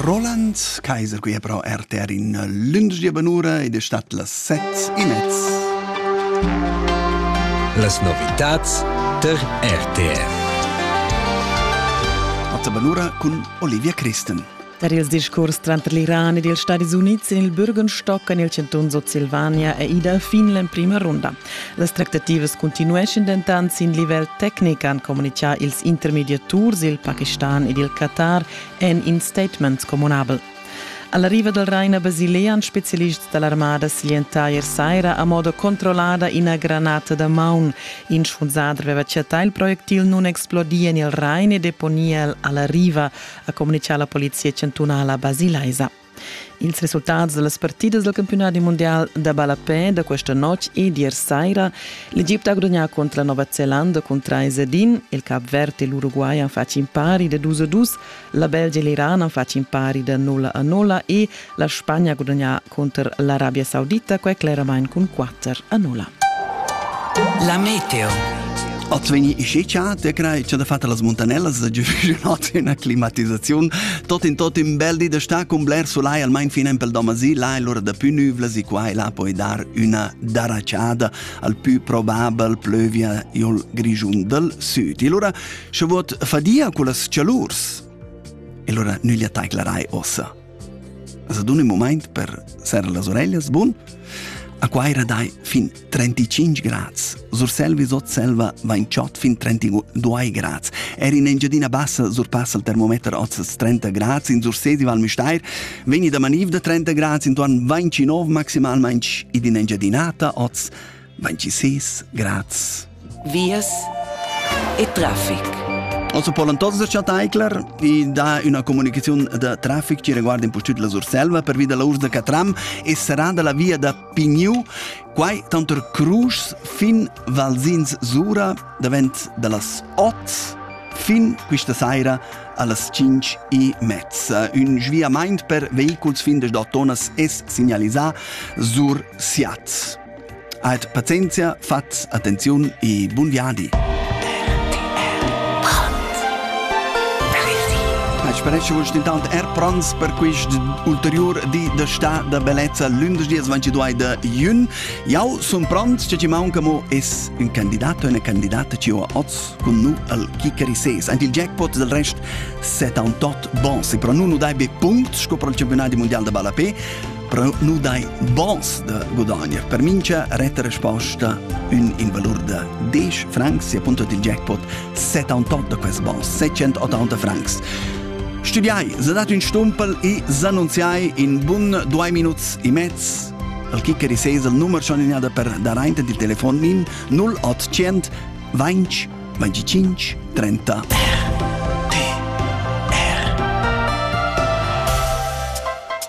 Roland Kaiser qui pro RTR in lündegia benura ed è stat las set in mezz. Las novitats ter RTR. A benura cun Olivia Christen. Tar ils discurs tranter l'Iran ed ils Stadis Unids en il Bürgenstock en il cantun Sutsilvania è ida fin l'emprima runda. Las tractativas cuntinueschan dentant sin livel tecnic, han communitgà ils intermediaturs, il Pakistan ed il Qatar en in statement communabel. Alla riva del Raina Basilea han spezialists dall'armada siglientà ier saira a moda controllada ina granata da maun. In schfunzader aveva chattà il projectil nun explodia en il Rain e deponia el alla riva, ha communitgà la polizia chantunala basilaisa. Ils resultats dallas partidas del campionadi mundial da ballapè da questa notg e d'ier saira l'Egipte ha gudagnà contro la Nova Zelanda cun 3 ed 1, il Cap Verde e l'Uruguay han fatg in pari da 2 a 2, la Belgia e l'Iran han fatg in pari da 0 a 0 e la Spagna ha gudagnà contro l'Arabia Saudita, quei cleramain cun 4. metter annulla. La meteo. Oz vegni ischicha de crai cha da fatta las muntanellas da giuvenot in climatizzaziun tot in tot in bel di da sta cun bler solai almain fin empel domasi là e lura da più nüvlas e qua e là poi dar una daracciada al più probabel plövia iol grigiun dal süd. E lura sche vot fadia cu las cialurs. E lura nüglia taiclerai ossa. As adun ün mumaint per serrer las oreglias, bun? A Quaira dai fin 35 grads. Surselvi sot selva vain chod fin 32 grads. Er in Engiadina Bassa surpassa il termometer oz 30 grads. In Sursesi Val Müstair vegni da maniv da 30 grads intuorn 29 maximalmaing ed in Engiadinata oz Manci sis, graz. Vias e traffic. Also Polan totes els Chataicler i dà una comunicazione da traffic ci riguarda un po' tut la Surselva per via della Urs de Catram e sarà dalla via da Pigniu quai tanto Crusch fin Valsins Sura davent dallas 8 fin questa sera allas 5 e mezza. Un sviament per vehiculs fin des Dottonas es segnalisà sur Siat. Ait pazienzia, fats attenziun e bun viadi. Eit sparescha vus intant er prans per quist ulteriur di da sta da bellezza lündeschdi 22 da jün. Jau sun pront, che ci maunca mo es un candidat o una candidata ci ho oz cun nu al Kikeri 6. Ant il jackpot del rest 78 bons. E pro nun nu dai be punct sco pro il campionat mundial da balla pe, però nu dai bons da gudagner. Per mincha retta resposta ün in valur da 10 francs, si appunto il jackpot 78 da quest bons, 780 francs. Studiai, se dat ün stumpel e s'annunziai in bun due minuts e mezz al kicker e ses il numero schon in per dar aint il telefon min 0800 20 25 30.